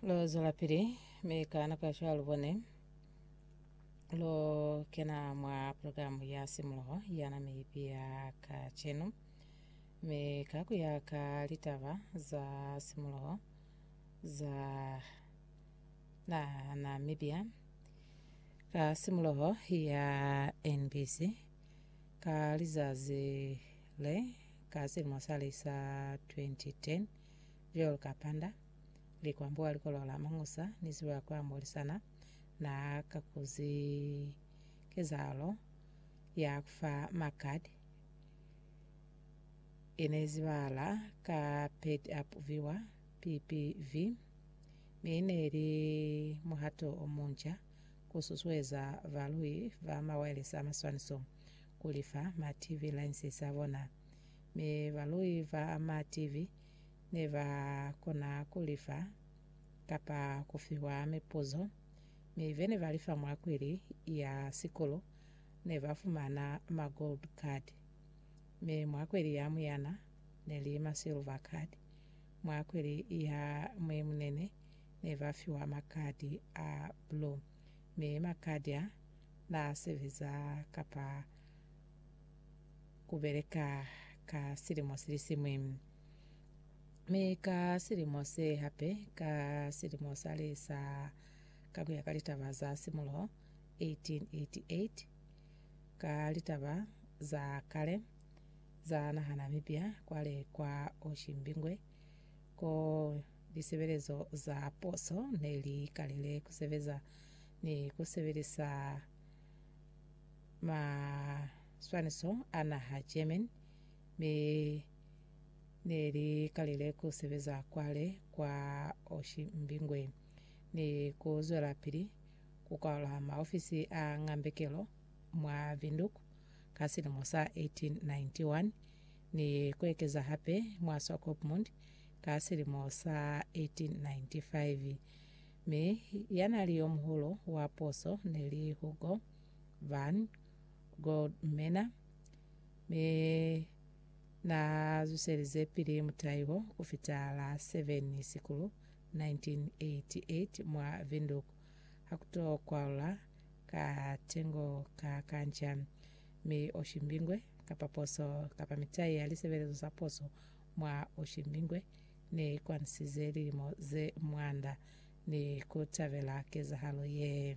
Lo zwelapili, mi ka nako ya cwalo bone lo kena mwa programu ya Simuloho ya na miipi ya kacenu. Mi ka ku ya ka litaba za simuloho za na Namibia, ka simuloho ya NBC, ka lizazi le ka silimo sali sa 2010, Joel Kapanda, likwambo wa likolo la Mangusa ni ziba kwa Molisana, na kakuzi kezahalo ya kufa makad ine zibahala ka Paid Up Viewer, PPV, mi ine ili muhato omunca ku susueza balui ba mawayelesi a maswaniso kulifa ma TV license a bona. Mi balui ba ma TV ne ba kona ku li fa kapa ku fiwa mipuzo, mi be ne ba li fa mwa kwili ya sikulu ne ba fumana ma gold card, mi mwa kwili ya muyana ne li ma silver card, mwa kwili ya muimunene ne ba fiwa ma card a blue, mi ma card a na sebeza kapa kubeleka ka silimo silisiñwi, mi ka silimo se hape, ka silimo sale sa, ka kuya ka litaba za simuloho 1888, ka litaba za kale za naha Namibia kwale kwa Oshimbingwe, ko lisebelezo za poso ne li kalile kusebeza ni kusebelisa ma Swaniso, Anna ha German, mi ne li kalile ku sebeza kwale kwa Oshimbingwe ni ku zwelapili ku kwala maofisi a ngambekelo mwa Windhoek ka silimo sa 1891 ni ku ekeza hape mwa Swakopmund ka silimo sa 1895. Mi ya nali yomuhulu wa puso neli Hugo van Goldmena, mi na zuselize pili mutai wo ku fita la 7 Sikulu 1988 mwa Windhoek, ha ku to kwalula ka tengo ka kanca, mi Oshimbingwe, kapa poso, kapa mitai ya lisebelezo sa poso mwa Oshimbingwe, ne i kwanisize lilimo ze mwanda ni ku tabela kezahalo ye.